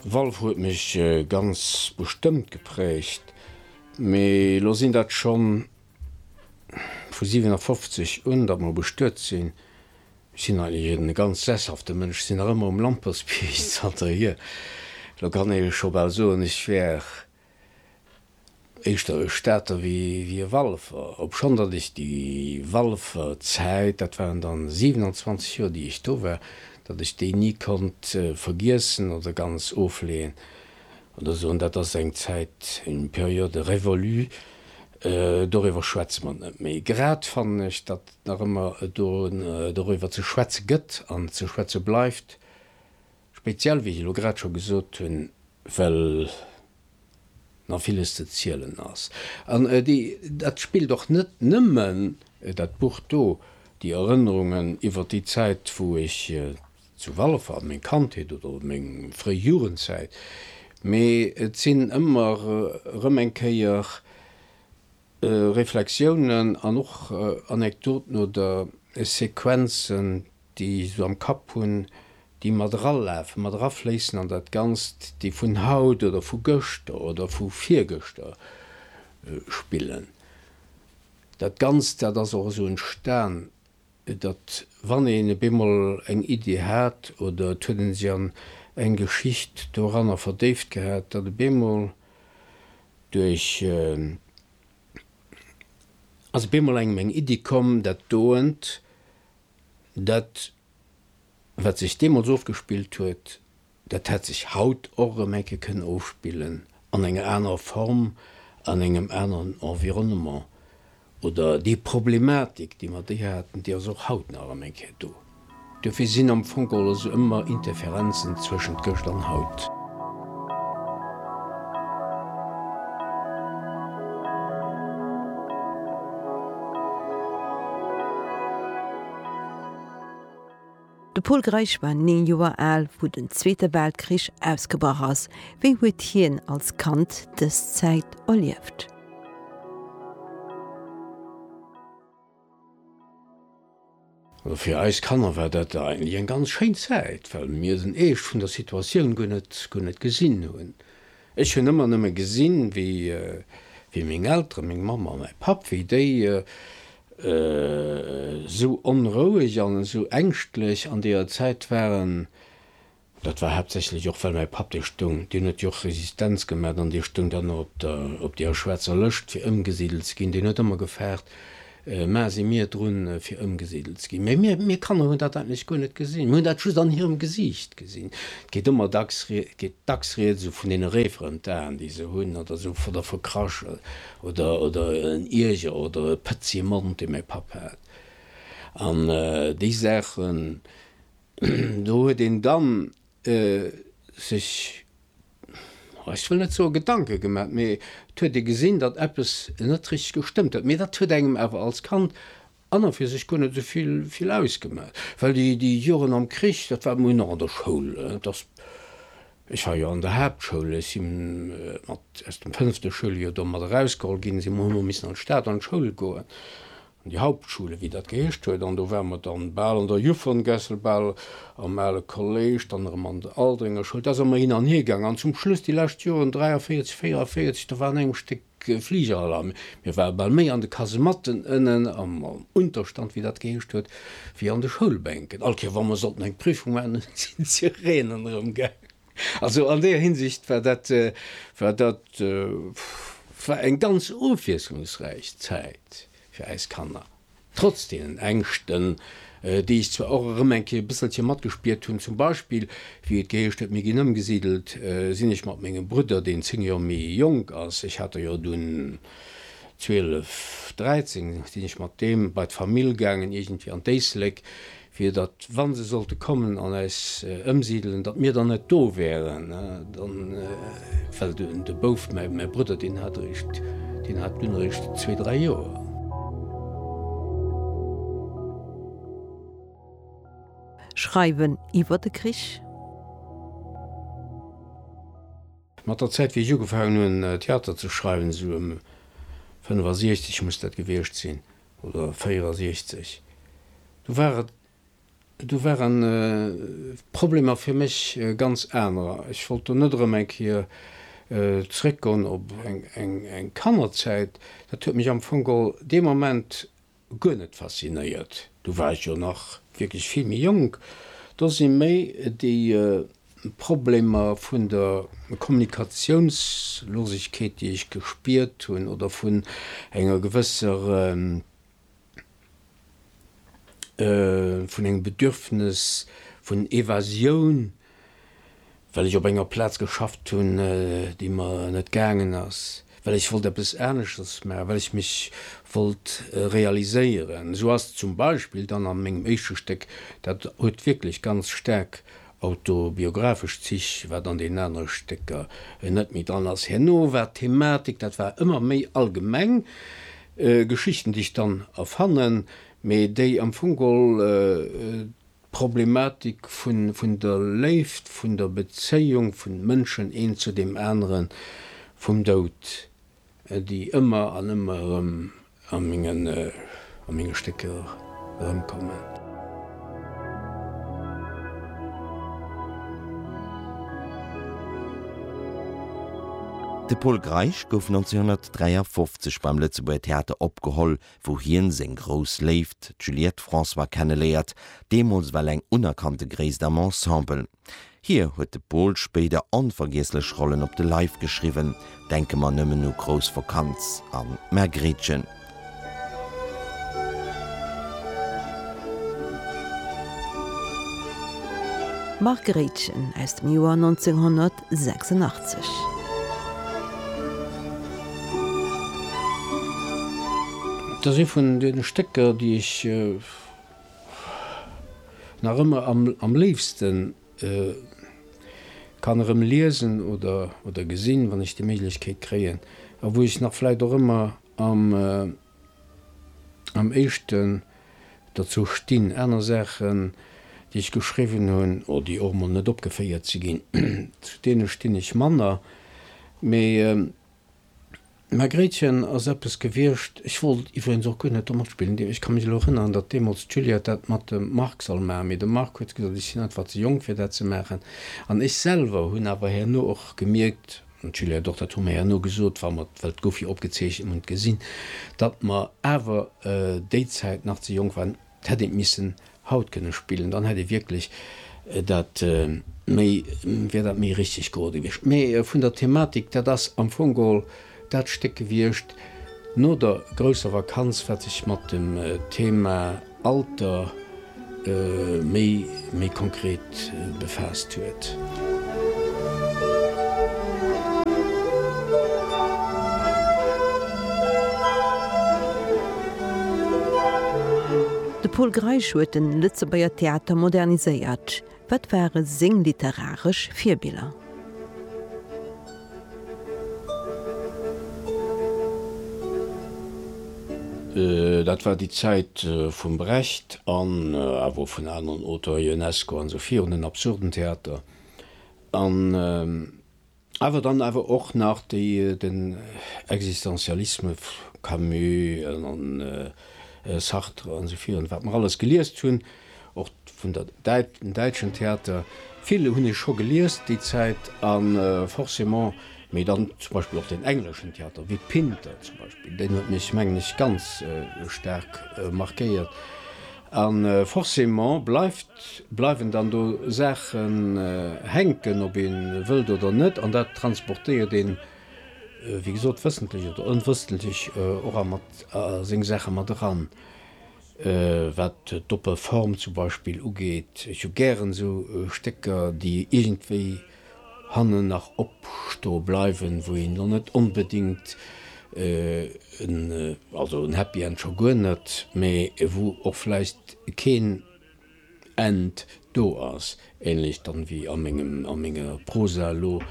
Valve huet mech ganz bestëmmt geprägt, mee elo sinn dat schonn vu 57 un, datt mer bestuet sinn. Ech sinn eigentlech e ganz sesshafte Mënsch, ech sinn nach ëmmer um Lampertsbierg zanterhier. Elo kann ee scho bal soen, ech wär Éischter e Stater wéi e Walfer, obschonn datt ech déi Walfer Zäit, dat waren dann 27 Joer déi ech do war, datt ech déi ni konnt vergiessen oder ganz ofleeën oder soen, dat ass eng Zäit, une période révolue, doriwwer schwätze mer net méi. Grad fannen ech, datt et nach ëmmer do doriwwer ze schwätze gëtt an ze schwätze bleift. Speziell, wéi ech elo grad scho gesot hunn, well nach villes ze zielen ass. An dat spillt och net nëmmen dat Buch do, déi Erënnerungen iwwer déi Zäit, wou ech zu Walfer, an meng Kandheet oder meng fréi Jugendzäit, mee et sinn ëmmer erëm eng Kéier, Reflexiounen an och Anekdoten oder Sequenzen, déi ech esou am Kapp hunn, déi mat eralafen, mat erafléissen an dat Ganzt, déi vun haut oder vu gëschter oder vu virgëschter spillen. Dat Ganzt, dat ass och esou entstan. datt wann een ebe mol eng Idee hat oder et huet ee sech an eng Geschicht doranner verdéift gehat, datt ebe mol duerch, ass ebe mol engem eng Iddi komm, dat doent, dat wat sech deemools ofgespillt huet, Dat hätt sech haut och erëm eng Kéier kënnen ofspillen, an enger anerer Form, an engem aneren Environnement. Oder déi Problematik, déi mer déi haten, déi ass och haut nach erëm eng Kéier do. Duerfir sinn am Fong geholl also ëmmer Interferenzen zwëschent gëscht an haut. De Pol Greisch war 9 Joer al, wou den Zweete Weltkrich ausgebrach ass. Wéi huet hien als Kand dës Zäit erlieft? Also fir eis Kanner war dat eigentlech eng ganz schéin Zäit, well mir den Eescht vun der Situatioun guer net gesinn hunn. Ech hunn ëmmer nëmme gesinn, wéi meng Elteren, meng Mamm a mäi Papp, wéi déi esou onroueg an esou ängschtlech an deeër Zäit waren. Dat war haaptsächlech och, well mäi Papp, dee stoung, deen huet jo och Resistenz gemat an dee stoung dann op deeër schwaarzer Lëscht, fir ëmgesidelt ze ginn, deen huet ëmmer gefaart, Mä si mir drun, fir ëmgesidelt ze ginn? Mä mir, mir Kanner hunn dat eigentlech guer net gesinn. Mir hunn dat just an hirem Gesiicht gesinn. Et geet ëmmer dacks, geet dacks Rieds esou vun deene réiferent Aen, déi se hunn, oder esou vun der Verkraschel, oder, oder en Ierger, oder e pëtzige Mond, dee mäi Papp hat. An déi Saachen do huet een dann sech, ech wëll net soe Gedanke gemat, mee et huet ee gesinn, datt eppes net richteg gestëmmt huet. Mee dat huet engem awer als Kand an a fir sech guer net esou vill ausgemat, well déi Joren am Krich, dat war mol nach an der Schoul, ech war jo an der Haaptschoul, ech si mat aus dem fënnefte Schouljoer do mat erausgeholl ginn, si mol hu mer missen an d'Stad an d'Schoul goen, An déi Hauptschule, wéi dat geheescht huet, an do ware mer dann bal an der Jufferen-gessel, bal am ale Kolléisch, dann erëm an der Aldringer Schoul, da se mer hin an hier gaangen, an zum Schluss, déi lescht Joren, 43, 44, da war an engem Stéck Fligerhall, a mir ware bal méi an de Kasematten ënnen am Unterstand, wéi dat geheescht huet, wéi an de Schoulbänken. All Kéier, wa mer sollten eng Prüfung maachen, sinn d'Sireenen erëm gaangen. Also an deeër Hinsicht war dat, war dat, war eng ganz ofwiesslungsräich Zäit fir eis Kanner, trotz deenen Ängschten, déi ech zwar och erëm eng Kéier e bësselche matgespiert hunn. Zum Beispill, wéi et geheescht huet, mir ginn ëmgesidelt, sinn ech mat mengem Brudder, deen zéng Joer méi jonk ass, ech hat der jo dunn zwielef, dräizéng, sinn ech mat deem bei d'Famill gaangen, iergendwéi an d'Éisléck, fir datt, wa se sollte kommen an äis ëmsidelen, datt mir dann net do wäeren, dann, well de Bouf, mäi Brudder, deen hat eréischt, deen hat dunn eréischt zwee, dräi Joer. Schreiwen iwwer de Krich. Mat der Zäit, wéi ech ugefaangen hunn, Theater ze schreiwen, esou ëm 65 muss dat gewiescht sinn, oder 64, do war et, do waren d'Problemer fir mech ganz anerer. Ech wollt do net erëm eng Kéier zréckgoen op eng Kannerzäit. Dat huet mech am Fong geholl dee Moment guer net faszinéiert. Do war ech jo nach wierklech vill méi jonk. Do si méi déi Problemer vun der Kommunikatiounslosigkeet, déi ech gespiert hunn, oder vun enger gewësser, vun engem Bedürfnis vun Evasioun, well ech op enger Plaz geschafft hunn, déi mer net gaangen ass, well ech wollt eppes aneschters maachen, well ech mech wollt realiséieren. Esou ass zum Beispill dann a mengem éischte Stéck, dat huet wierklech ganz staark, autobiographesch Zich, wat an deenen anere Stécker net méi dran ass. Herno war d'Thematik, dat war ëmmer méi allgemeng, Geschichten, déi ech dann erfannen, mee déi am Fong gol d'Problematik vun der Léift, vun der Bezéiung vun Mënschen een zu deem aneren, vum Doud déi ëmmer an ëmmer erëm a menge Stécker erëmkommen. De Pol Greisch gouf 1953 beim Lëtzebuerger Theater opgeholl, wou hien seng grouss Léift, d'Juliette François, kenneléiert, deemools well eng unerkannte Gréisst am Ensemble. Hir huet de Pol spéider onvergiesslech Rollen op de Leif geschriwwen, denke mer nëmmen u Grouss Vakanz an D'Margréitchen. D'Margréitchen aus dem Joer 1986. Et ass ee vun deene Stécker, déi ech Nach ëmmer am léifsten kann erëm liesen oder gesinn, wann ech déi Méiglechkeet kréien, a wou ech nach vläit och ëmmer am éischten derzou stinn, aner Saachen, déi ech geschriwwen hunn, oder déi och emol net opgeféiert si ginn, zu deene stinn ech manner. Mee D'Margréitchen ass eppes gewiescht, ech wollt iwwregens och guer net do matspillen, ech ka mech elo erënneren, datt deemools d'Juliette dat mat dem Marc soll maachen, mee de Marc huet gesot, ech sinn einfach ze jonk fir dat ze maachen. An ech selwer hunn awer herno och gemierkt, an d'Juliette och, dat hu mer herno gesot, wa mer, well et gouf jo opgezeechent, mer hunn et gesinn, datt mer awer déi Zäit nach ze jonk waren. D'hätt ee missen haut kënne spillen, dann hätt ee wierklech dat méi, wär dat méi richteg geroll gewiescht. Mä vun der Thematik, dat ass am Fong geholl dat Stéck gewiescht no der grousser Vakanz, wat sech mat dem Thema Alter méi konkret. befaasst huet. De Pol Greisch huet de Lëtzebuerger Theater moderniséiert. Wat ware seng literaresch Virbiller? Dat war déi Zäit vum Brecht an awer och vun aneren Auteurs, Ionesco an esou virun, en absurden Theater. An awer dann awer och nach déi den Existentialisme, Camus an Sartre an esou virun, wat mer alles geliest hunn. och vun der Däit, dem däitschen Theater, vill hunn ech scho gelies déi Zäit, a forcément, mee dann zum Beispill och den engleschen Theater, wéi Pinter zum Beispill, deen huet mech, mengen ech, ganz staark markéiert, a forcément bleift, bleiwen dann do Saachen hänken, ob ee wëllt oder net, an dat transportéiert een, wéi gesot, wëssentlech oder onwëssentlech och a mat a seng Saache mat eran. Wat d'oppe Form zum Beispill ugeet, ech hu gären esou Stécker, déi iergendwéi hannen nach opstoe bleiwen, wou een lo net onbedéngt en, also en Happy End scho guer net, mä wou och vläicht keen End do ass, ähnlech dann wéi a menger Prosa elo.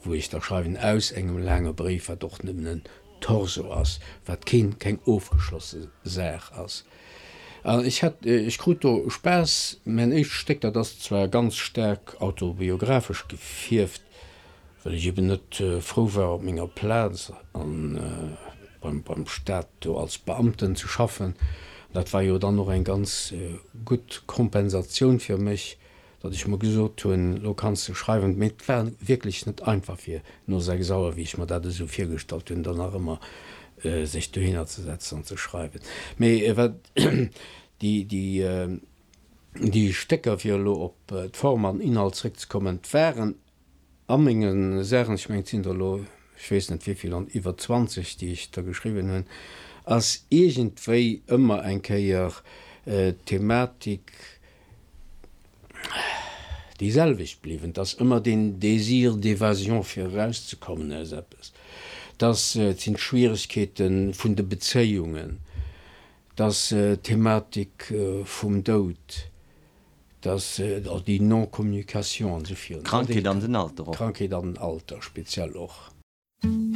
wou ech da schreiwen, aus engem laange Bréif, wat och nëmmen en Torso ass, wat keen, keng ofgeschlosse Saach ass. An ech hat, ech krut do Spaass. Mäin éischt Stéck, dat ass zwar ganz staark autobiographesch gefierft, well ech eben net frou war, op menger Plaz an beim, beim Staat do als Beamten ze schaffen. Dat war jo dann och eng ganz gutt Kompensatioun fir mech, datt ech mer gesot hunn, elo kanns de schreiwen, mee et war wierklech net einfach fir no 6 Auer, wéi ech mer dat esou virgestallt hunn, dann nach ëmmer sech dohinner ze setzen an ze schreiwen. Mee wat déi Stécker, fir elo op d'Form an Inhalt zréckzekommen, waren A menge Saachen, ech mengen et sinn der elo ech weess net wéivill an iwwer 20 déi ech der geschriwwen hunn, ass iergendwéi ëmmer eng Kéier d'Thematik déi selwecht bliwwen, dass ëmmer deen Désir d'évasion fir erauszekommen aus eppes, dass et sinn d'Schwieregkeete vun de Bezéiungen, dass d'Thematik vum Doud, Dass och déi Non-Communication an esou virun. D'Krankheet an den Alter och. D'Krankheet an den Alter speziell och.